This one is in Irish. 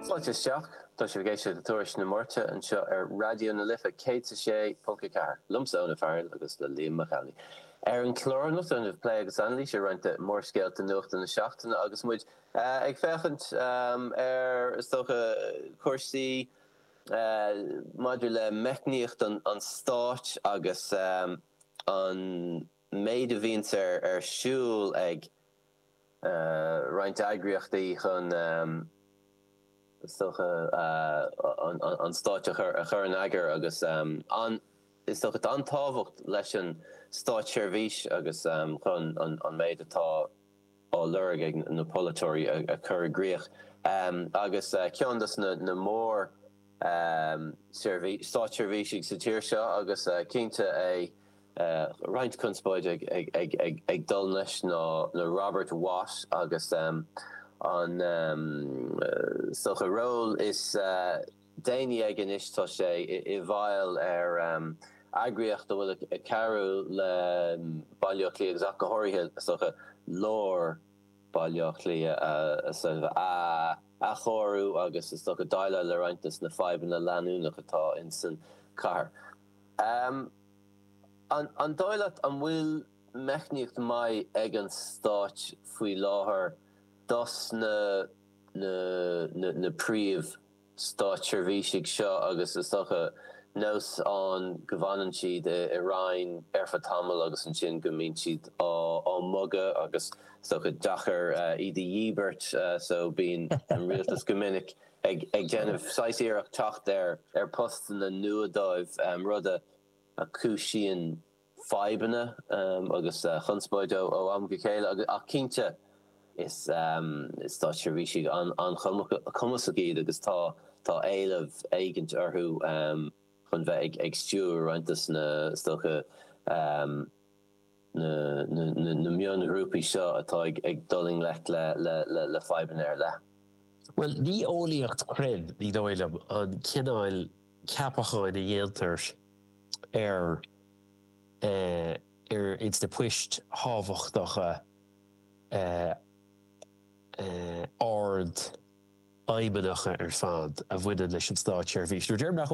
Fáilte isteach. Tá sibh ag éisteacht le Tuairisc na Máirte anseo ar Raidió na Life 106.4, liomsa, Eoin Ó Fearghail, agus le Liam Mac Amhlaigh. Ar an chlár anocht déanfaimid plé agus anailís ar roinnt de mhórscéalta nuachta na seachtaine agus muid ag féachaint ar, is dócha, cúrsaí maidir le meicníocht an stáit agus an méid a bhíonns ar siúl ag. roinnt eagraíochtaí chun, is dócha, an stáit a chur in eagar agus is dócha an tábhacht leis an státseirbhís agus chun an méid atá á lorg ag na polaiteoirí a chur i gcrích. Agus ceann des na mór státseirbhísigh sa tír seo agus cinnte é, roinnt conspóide ag dul leis ná Robert Watt agus an, is dócha, ról is déanaí aige anois tá sé i bhfeighil ar eagraíocht a bhfuil ag cabhrú le Baile Átha Cliath agus ach go háirithe is dócha Lár Bhaile Átha Cliath a athchóiriú agus is dócha déileáil le roinnt des na fadhbanna leanúnach atá insan cathair. An dóigh leat an bhfuil meicníocht maith ag an Stáit faoi láthair dos na na príomh stáitseirbhísigh seo agus is dócha nós ann go bhfanann siad i Roinn ar feadh tamaill agus ansin go mbíonn siad á mbogadh agus is dócha deacair iad a dhíbirt so bíonn an Rialtas go minic ag déanamh saghas iarracht teacht ar postanna nua dóibh, rud a chúisíonn fadhbanna agus chonspóid ó am go chéile. Ach cinnte, is stáitseirbhísigh an-chumasach iad agus tá éileamh éigint orthu chun bheith ag stiúradh roinnt des na, is dócha. na mionghrúpaí seo atá ag dul i ngleic le fadhbanna ar leith. Bhuel, ní eolaíocht chruinn, ní dóigh liom, an cineál ceapacháin a dhéantar ar ins na poist thábhachtacha ard fheidhmeannacha ar fad a bhaineann leis an státseirbhís. Nó déarfainn nach eol.